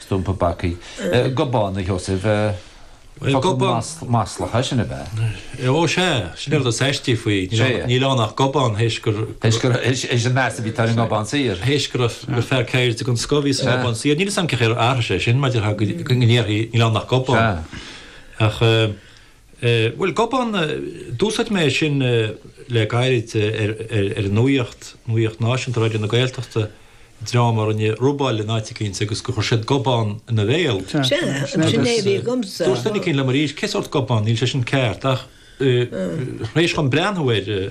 Stumpa bacaigh. Gobán, a Sheosaimh. Focal maslach é sin, ab ea? Ó sea, sin é an rud is aistí faoi. Níl ann ach gobán, théis gur. Théis gur. Théis an meas a bhí acu ar an nGobán Saor. Théis gur fear ceirde den scoth a bhí sa nGobán Saor. Níl 'fhios a'm cén chaoi ar athraigh sé sin, maidir le go ndéarfaí níl ann ach gobán. Ach. Eh, bhuel, gobán, eh, d'úsáid mé é sin, eh, le gairid, eh, ar, ar, ar an nuaíocht, nuaíocht náisiúnta, Raidió na Gaeltachta, dream a rinne robáil in áit eicínt agus gur chuir siad gobán ina bhéal. Sea, Sea, sin sin é a agus, bhí eh, agamsa. Dúirt duine eicínt liom arís, cén sórt gobán, níl sé sin ceart ach, eh, tar éis dhom breathnú air, eh,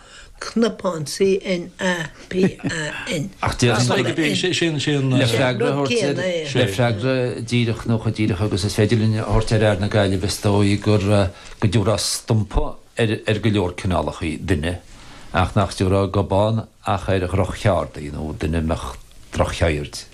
cnapán CNA PAN. Ach déarfainn Tá gur. sé sin, sin, sin. Le freagra a thabhairt ar. Le freagra díreach nó chomh díreach agus is féidir linn a thabhairt ar fhear na Gaillimhe is dóigh gur go dtiúrfá stumpa ar ar go leor cineálachaí duine ach nach dtiúrfá gobán ach ar dhroch-cheardaí nó duine a mbeadh droch-cheird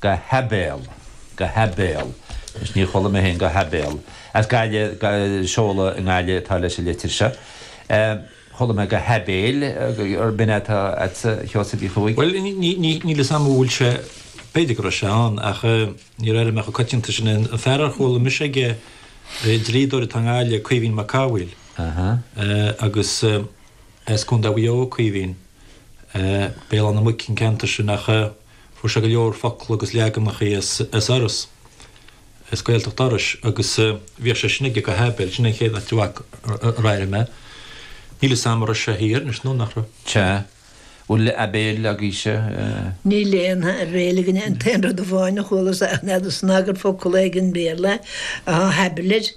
Go haibéal. Go haibéal. Anois níor chuala mé féin go haibéal. As Gaillimh, ga, seoladh i nGaillimh atá leis an litir seo. Chuala mé go haibéil ab in atá agatsa, Sheosaimh Uí Chuaig. Bhuel, níl 'fhios a'm an bhfuil sé, b'fhéidir go raibh sé ann, ach níor airigh mé an-choitianta é, sin, an fear ar chuala mise aige, dlíodóir atá i nGaillimh, Caoimhín Mac Cathmhaoil, agus as Contae Mhaigh Eo Caoimhín, Béal Átha na Muice an ceantar sin, ach. Fuair sé go leor focal agus leaganachaí as Iorras, as Gaeltacht Iorrais, agus bhíodh sé sin aige go haibéil. Sin an chéad áit ar airigh mé. Níl 'fhios a'm a' raibh sé thiar anois nó nach raibh. Cha bhfuil aibéil agaibhse. Níl aon aibhéil againne. An t-aon rud amháin a chualas a'm ná go snagar focal é ag an Bhéarla, a thablet.